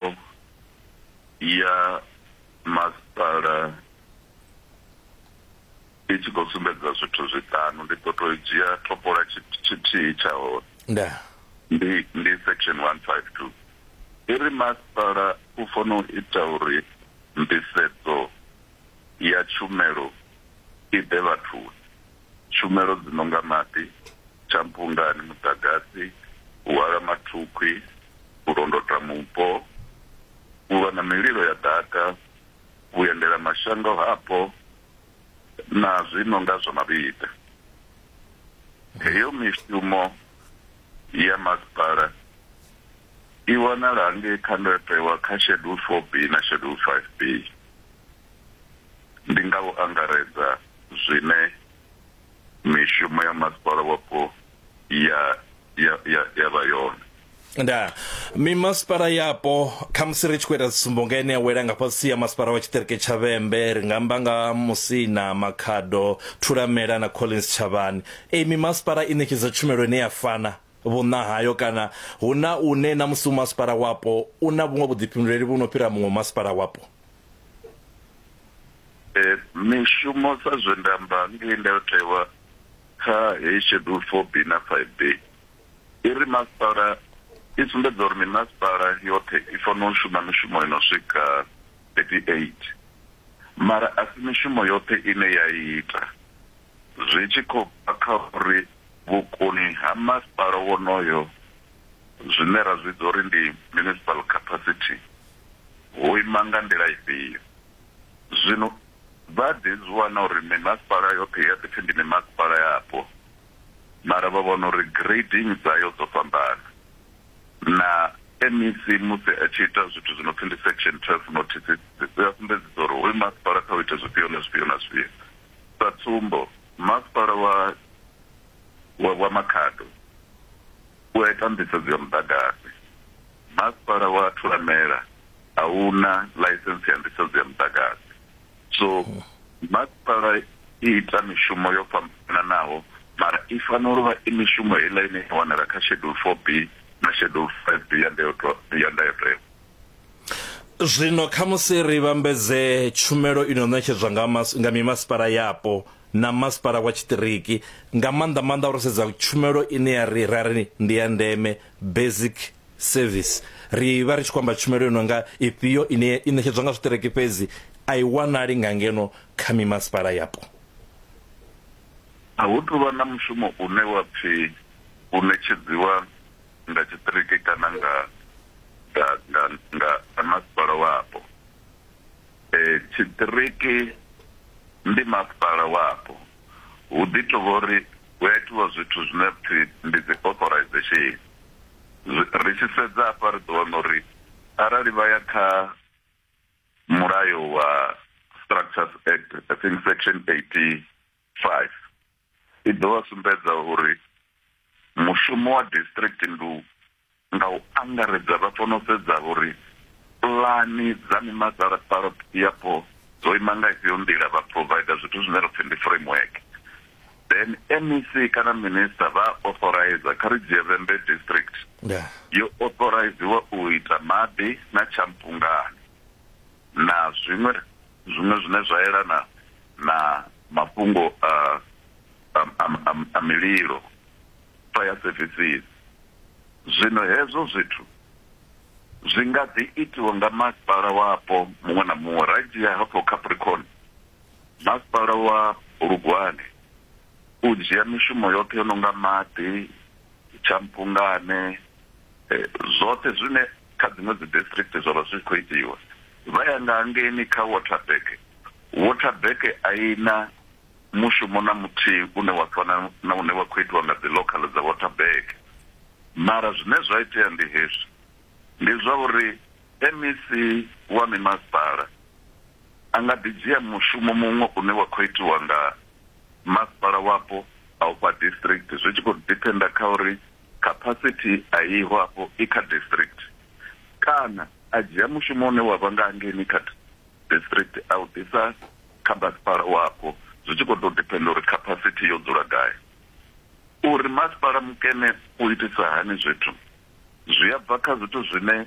Tshumelo ya Masipala i tshi khou sumbedza zwithu zwiṱanu, ndi ḓo tou dzhia topola tshithihi tsha hone. Ndaa. Ndi, ndi section 152. I ri masipala u fanela u ita uri nḓisedzo ya tshumelo i ḓe vhathuni. tshumelo dzi no nga maḓi, tshampungani, muḓagasi, u hwala mathukhwi, u londota mupo, u lwa na mililo ya ḓaka, vhuendelamashango hapo na zwi no nga zwa mavhiḓa. Heyo mishumo ya masipala i wanala hangei kha ndayotewa kha Schedule 4B na Schedule 5B. Ndi nga u angaredza. zwine mishumo ya masipala wapo ya ya ya ya vha yone nda mimasipala yapo khamusi ri tshi khou ita tsumbo nga ine ya wela nga fhasi ya masipala wa tshiṱiriki tsha vhembe ri nga amba nga musina makhado thulamela na collins tshavhani e mimasipala i ṋetshedza tshumelo ine ya fana vhuṋa hayo kana hu na une na musi masipala wapo u na vhuṅwe vhuḓifhinduleli vhu no fhira muṅwe masipala wapo Eh, mishumo sa zwe nda amba ngei ndayotewa kha heyi schedule four b na five b i ri masipala i sumbedza uri mimasipala yoṱhe i fanela u shuma mishumo ino swika 38 mara a si mishumo yoṱhe ine ya ita zwi tshi khou bva kha uri vhukoni ha masipala wonoyo zwine ra zwi vhidza uri ndi municipal capacity ho ima nga nḓila ifhio. Zwino vha a ḓi zwi wana uri mimasipala yoṱhe i a ḓi pfi ndi mimasipala yapo, mara vha vhona uri grading dzayo dzo fhambana. Na MEC musi a tshi ita zwithu zwi no pfi ndi Section 12 notices, u a sumbedzisa uri hoyu masipala kha u ite zwifhio na zwifhio na zwifhio. Sa tsumbo, masipala wa wa Makhado u a ita nḓisedzo ya muḓagasi. Masipala wa Thulamela a u na ḽaisense ya nḓisedzo ya muḓagasi. So masipala i ita mishumo yo fhambananaho mara i fanela u vha i mishumo heiḽa ine ya wanala kha Schedule 4B na Schedule 5B ya ndayotewa ya ndayotewa. Zwino khamusi ri vhambedze tshumelo i no ṋetshedzwa nga mas nga mimasipala yapo na masipala wa tshiṱiriki, nga maanḓa-maanḓa ro sedza tshumelo ine ya ri ra ri ndi ya ndeme basic service ri vha ri tshi khou amba tshumelo yo no nga ifhio ine i ṋetshedzwa nga zwiṱereke fhedzi a i wanali nga ngeno kha mimasipala yapo a hu tuvha na mushumo une wa pfi u ṋetshedziwa nga tshiṱiriki kana nga nga nga nga nga masipala wapo e tshiṱiriki ndi masipala wapo hu ḓi tou vha uri hu a itiwa zwithu zwine ra pfi ndi dzi authorization. Ri tshi sedza hafha ri ḓo wana uri arali vha ya kha mulayo wa Structures Act I think section 85 i ḓo vha sumbedza uri mushumo wa district ndi u Nga u angaredza, vha fanela u sedza uri pulani dza mimasalatsalo yapo dzo ima nga ifhio nḓila, vha provider zwithu zwine ra pfi ndi framework. Then MEC kana minister vha a authorizer, kha ri dzhie Vhembe district, yo authoriziwa u ita maḓi na tshampungani na zwiṅwe zwiṅwe zwine zwa yelana na mafhungo a a a a mililo. vha ya sevisini. Zwino hezwo zwithu zwi nga ḓi itiwa nga masipala wapo muṅwe na muṅwe. Ra dzhia hafho Capricorn, masipala wa Bulugwane u dzhia mishumo yoṱhe yo no nga maḓi, tshampungane, eh, zwoṱhe zwine kha dziṅwe dzi district zwa vha zwi khou itiwa. Vha ya nga hangeini kha Waterberg, Waterberg a i na mushumo na muthihi une wa fana na une wa khou itiwa nga dziḽokhaḽa dza Waterberg. Mara zwine zwa itea ndi hezwi, Ndi zwa uri MEC wa mimasipala a nga ḓi dzhia mushumo muṅwe une wa khou itiwa nga masipala wapo a ufha district zwi tshi khou diphenda kha uri capacity a iho afho i kha district kana a dzhia mushumo une wa vha nga hangeini kha district a u ḓisa kha masipala wapo zwi tshi khou tou depender uri capacity yo dzula gai. Uri masipala mukene u itisa hani zwithu zwi a bva kha zwithu zwine